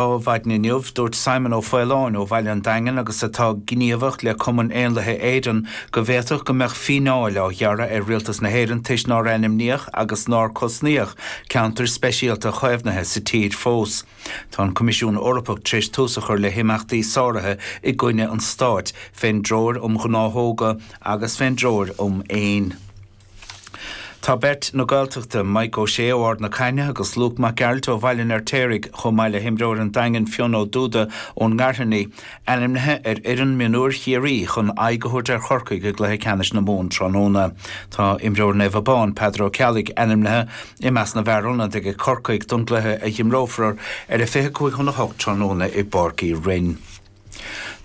Maidin inniu, dúirt Simon Ó Faoláin ó Bhaile an Daingin agus atá gníomhach le Cumann Éanlaithe Éireann go bhféadfadh go mbeadh fíneáil á ghearradh ar Rialtas na hÉireann toisc nár ainmníodh agus nár cosnaíodh ceantair speisialta chaomhnaithe sa tír fós. Tá an Coimisiún Eorpach tar éis tús a chur le himeachtaí sáraithe i gcoinne an Stáit fén dTreoir um Ghnáthóga agus fén dTreoir um Éin. Tá beirt na Gaeltachta, Mike Ó Sé ó Ard na Caithne agus Luke Mac Gearailt ó Bhaile an Fheirtéaraigh, chomh maith le himreoir an Daingin Fionn Ó Dubhda ón nGairfeanaigh, ainmnithe ar fhoireann mionúir Chiarraí chun aghaidh a thabhairt ar Chorcaigh i gcluiche ceannais na Mumhan tráthnóna. Tá imreoir Naomh Abán, Peadar Ó Ceallaigh, ainmnithe i measc na bhfear ionaid ag Corcaigh don gcluiche a dh'imreofar ar a 25 chun a 8 tráthnóna i bPáirc Uí Rinn.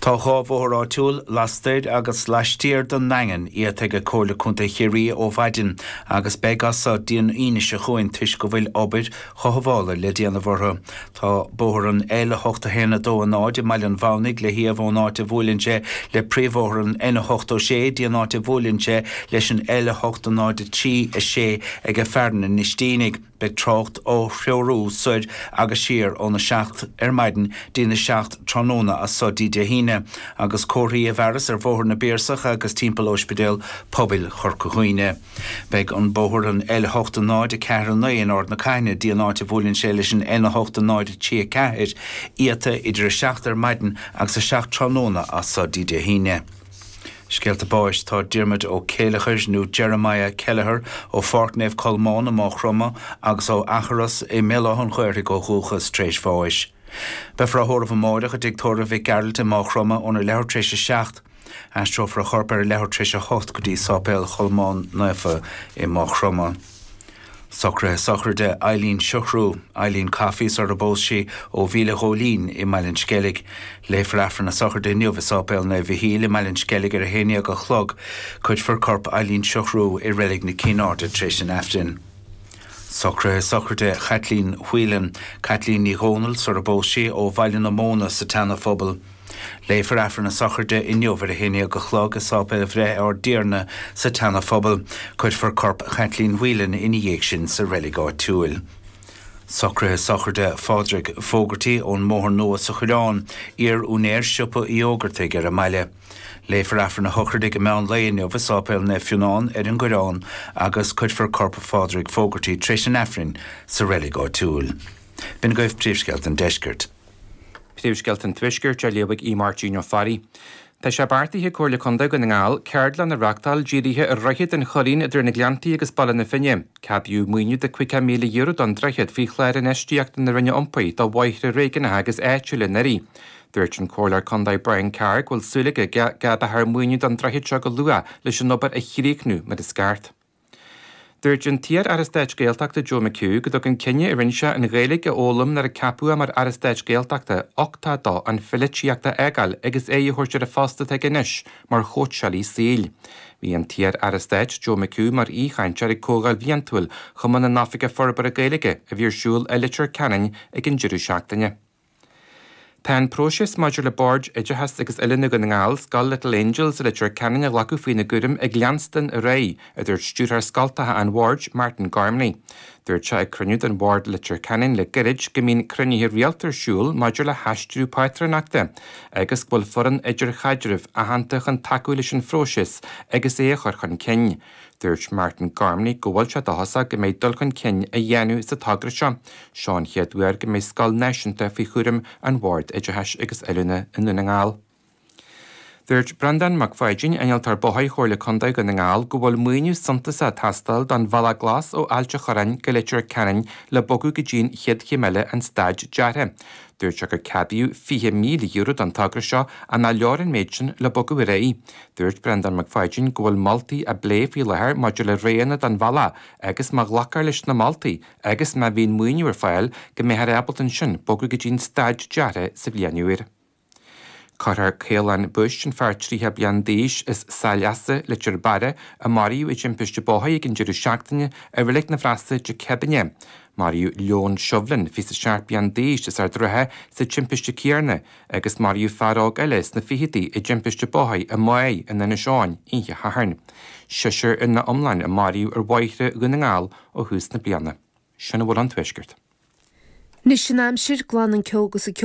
Tá dhá bhóthar áitiúil lastoir agus laistiar den nDaingean iata ag Comhairle Contae Chiarraí ó mhaidin agus beidh as so dtí'n Aoine seo chugainn toisc go bhfuil obair chothabhála le déanamh orthu. Tá bóthar an L8 1 2 0 i mBaile an Mhamhnaigh le hiamh ón áit a bhuaileann sé le príomhbhóthar an N8 6 dtí'n áit a bhuaileann sé leis an L8 0 3 6 ag Fearann an Iostínigh. Beidh trácht á threorú soir agus siar óna 7 ar maidin dtí'n a 7 tráthnóna as so dtí Dé hAoine, agus comharthaí i bhfearas ar Bhóthar na bPiarsach agus timpeall Ospidéal Pobail Chorca Dhuibhne. Beidh an bóthar an L8 0-4 9 in Ard na Caithne dtí an áit a bhuaileann sé leis an N8 0-3 4, iata idir a 7 ar maidin agus a 7 tráthnóna as so dtí Dé hAoine. Scéalta Báis Tá Diarmuid Ó Céilleachair, nó Jeremiah Kelleher, ó Pháirc Naomh Colmán i Maigh Chromtha agus ó Eachros i mBéal Átha'n Ghaorthaidh ó dhúchas, tar éis bháis. Beifear á thórramh amáireach i dtigh tórraimh Mhic Gearailt i Maigh Chromtha óna leathuair tar éis a seacht. Aistreofar a chorp ar a leathuair tar éis a hocht go dtí Sáipéal Cholmáin Naofa i Maigh Chromtha. Socruithe sochraide Eileen Siochrú, Eileen Coffey sarar phós sí ó Mhíle Ghóilín i mBaile an Sceilg. Léifear Aifreann a sochraide inniu i Sáipéal Naomh Mhichíl i mBaile an Sceilg ar a 11 a chlog. Cuirfear corp Eileen Siochrú i Reilig na Cinn Airde tar éis an Aifrinn. Socruithe sochraide Chaitlín Whelan, Caitlín Ní Dhomhnaill sarar phós sí ó Bhaile na Móna sa tSeana Phobal. Léifear Aifreann a sochraide inniu ar a haon déag a chlog i Sáipéal Bhreith Ár dTiarna sa tSeana Phobal. Cuirfear corp Chaitlín Whelan ina dhiaidh sin sa reilig áitiúil. Socruithe Sochraide Phádraig Fogarty ón mBóthar Nua sa Choireán, iar úinéir siopa Uí Fhógartaigh ar an mbaile. Léifear Aifreann a shochraide ag an meán lae inniu i Sáipéal Naomh Fionán ar an gCoireán agus cuirfear corp Phádraig Fogarty tréis an Aifrinn sa reilig áitiúil. B'in agaibh príomhscéalta an Deiscirt. Príomhscéalta an Tuaiscirt á léamh ag Aodh Máirtín Ó Fearraigh. Tá sé beartaithe ag Comhairle Contae Dhún na nGall ceardlann a reachtáil dírithe ar Dhroichead an Choirín idir na Gleanntaí agus Baile na Finne. Ceadaíodh maoiniú de €50,000 don droichead faoi Chlár Infheistíochta na Roinne Iompair do bhóithre réigiúnacha agus áitiúla anuraidh. Dúirt an Comhairleoir Contae Brian Carr go bhfuil súil aige go gceadófar maoiniú don droichead seo go luath leis an obair a chríochnú mar is ceart. Dúirt an t-iar-aire stáit Gaeltachta Joe McHugh go dtug an cinneadh a rinne sé an Ghaeilge a fhoghlaim nuair a ceapadh é mar aire stáit Gaeltachta uchtach dó an pholaitíocht a fhágáil agus aghaidh a thabhairt ar an phost atá aige anois mar chóitseálaí saoil. Bhí an t-iar-aire stáit Joe McHugh mar aoichainteoir ag comhdháil bhliantúil Chumann na nOifigeach Forbartha Gaeilge a bhí ar siúl i Leitir Ceanainn ag an deireadh seachtaine. Tá an próiseas maidir le Bord Oideachais agus Oiliúna Dhún na nGall, Scoil Little Angels i Leitir Ceanainn a ghlacadh faoina gcúram ag leanstan ar aghaidh, a dúirt Stiúrthóir Scoltacha an Bhoird, Martin Gormley. Dúirt sé ag cruinniú den Bhord i Leitir Ceanainn le gairid go mbíonn cruinnithe rialta ar siúl maidir le haistriú pátrúnachta agus go bhfuil foireann idirchaidrimh aitheanta chun tacú leis an phróiseas agus é a chur chun cinn. Dúirt Martin Gormley go bhfuil sé dóchasach go mbeidh dul chun cinn á dhéanamh sa togra seo. Seo an chéad uair go mbeidh scoil náisiúnta faoi chúram an Bhord Oideachais agus Oiliúna i nDún na nGall. Dúirt Breandán Mac Pháidín, Innealtóir Bóthair Chomhairle Contae Dhún na nGall go bhfuil maoiniú suntasach ag teastáil don Bhealach Glas ó Ailt an Chorráin go Leitir Ceanainn le bogadh go dtí'n chéad chéim eile an staid deartha. Dúirt sé gur ceadaíodh €20,000 don togra seo ach nár leor an méid sin le bogadh ar aghaidh. Dúirt Breandán Mac Pháidín go bhfuil moltaí á bplé faoi láthair maidir le roghanna don bhealach agus má ghlacfar leis na moltaí agus má bhíonn maoiniú ar fáil go mbeifear ábalta ansin bogadh go dtí an staid deartha sa bhliain úr. Cuirfear Caolán Bush, an fear 30 bliain d'aois as Saileasa, Leitir Beara, a maraíodh i dtimpiste bóthair ag an deireadh seachtaine i Reilig na bhFrosa Dé Céadaoine. Maraíodh Leon Shovlin, 27 bliain d'aois as Ard an Rátha sa timpiste céarna, agus maraíodh fear óg eile sna fichidí i dtimpiste bóthair i Magh in Inis Eoghain oíche Shathairn. Seisear ina iomlán a maraíodh ar bhóithre Dhún na nGall ó thús na bliana. Sin a bhfuil ón Tuaisceart. Anois an aimsir, glan an ceo agus an ceo.